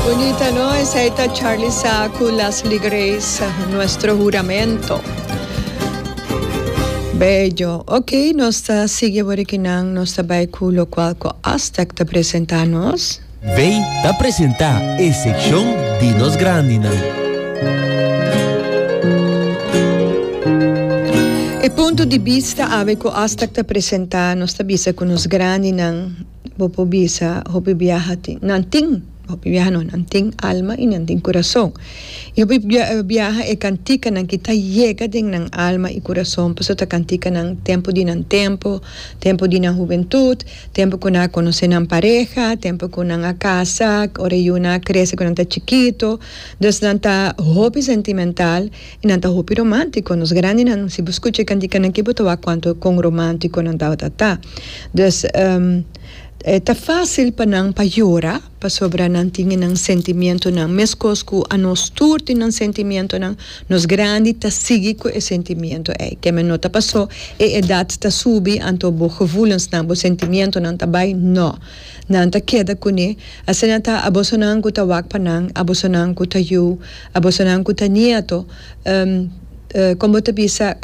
Bunita no esei ta Charly Sa cu Leslie Grace Nuestro Juramento Bello ok nos ta sigui awor e kinan nos ta bay cu locual cu Aztec ta presenta nos. Bay ta presenta e seccion di nos grandinan. E punto di bista awe cu Aztec ta presenta nos ta bisa cu nos grandinan. Bo por bisa, Hopi biaha tin, nan tin, hopi biaha no, nan tin alma i nan tin kurason. I hopi biaha e kantikanan ki ta yega den nan alma i kurason pasobra ta kantikanan tempu di nan tempu, tempu di nan hubentut, tempu ku nan a konosé nan pareha, tempu ku nan a kasa, ora e yunan a krese ku nan ta chikitu. Dus nan ta hopi sentimental. I nan ta hopi romántiko. Nos grandinan, si bo skucha e kantikanan akí bo ta wak kuantu kon romántiko nan tabata ta. Dus, e ta fásil pa nan pa yora pasobra nan tin e nan sentimientonan. Meskos ku anos tur tin nan sentimientonan, nos grandi ta sigui ku e sentimiento ei. Ke men no ta pasó e edat ta subi anto bo gevoelensnan, bo sentimientonan ta bai? No. Nan ta keda kuné. Asina ta, a bosonan ku ta wak pa nan, a bosonan ku ta yu. A bosonan ku ta nieto, kon bo ta bisa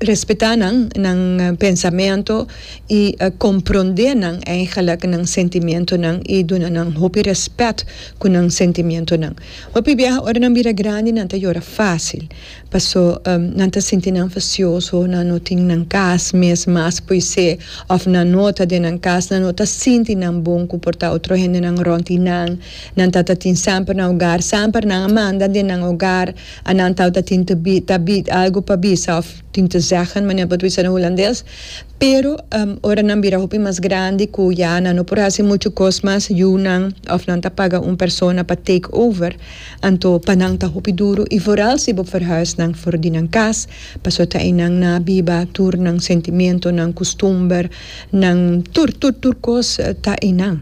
respetá nan, nan pensamentu i komprondé nan eigelik nan sentimentunan i duna nan hopi rèspèt ku nan sentimentunan? Hopi biaha ora nan bira grandi nan ta yora fásil paso nan ta sinti nan fasioso, nan no tin nan kas mes mas poisé òf nan no ta den nan kas, nan no ta sinti nan bon ku por ta otro hendenan rònt di nan. Nan tata tin samper nan ogar, samper nan a manda den nan ogar, a nan tauta tin te bi ta bi algo pa bisa of tin te zeggen manera bo ta bisa den hulandes, pero ora nan bira hopi mas grandi ku ya nan no por hasi muchu kos mas yunan of nan ta paga un persona pa take over anto pa nan ta hopi duru i vooral si bo verhuis nan for di nan kas pasobra ta einan nan a biba tur nan sentimentu nan kustumber nan tur tur tur kos ta einan.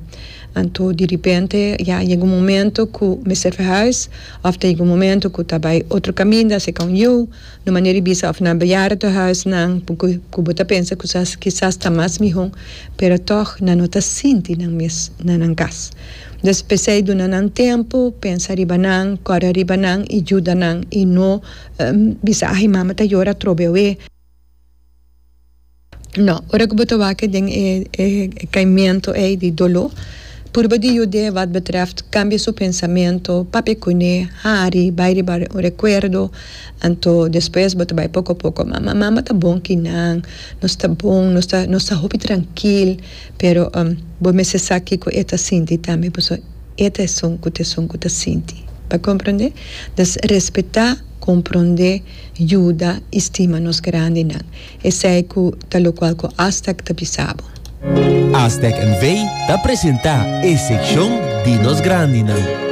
Anto di ripente ya a yega un momento ku mester verhuis òf ta yega un momento ku ta bai otro kaminda, seka un yu, no manera di bisa òf na beyara tur huisnan por ku bo ta pensa ku sa kisas ta mas mihó, pero tòg nan no ta sinti nan mes na nan kas. Dus p'esei duna nan tempu, pensa riba nan, kòre riba nan i juda nan i no bisa ai mama ta yora trobe awe. No. Ora ku bo ta wak den e kaimentu ei di doló, purba di yud'é wèt betrèft kambia su pensamentu, papia kuné, hari, bai riba un rekuerdo. Anto despues bo ta bai poko poko. Mama, mama ta bon ku nan. Nos ta bon, nos ta nos ta hopi trankil. Pero bo mester sa kiko e ta sinti tambe pasobra e ta esun ku ta esun ku ta sinti. Bo a komprondé? Entonces, respetá, komprondé. yuda i stima nos grandinan, esei ku ta lokual ku Aztec ta bisa bo. Aztec NV ta presentá e sekshon di nos grandinan.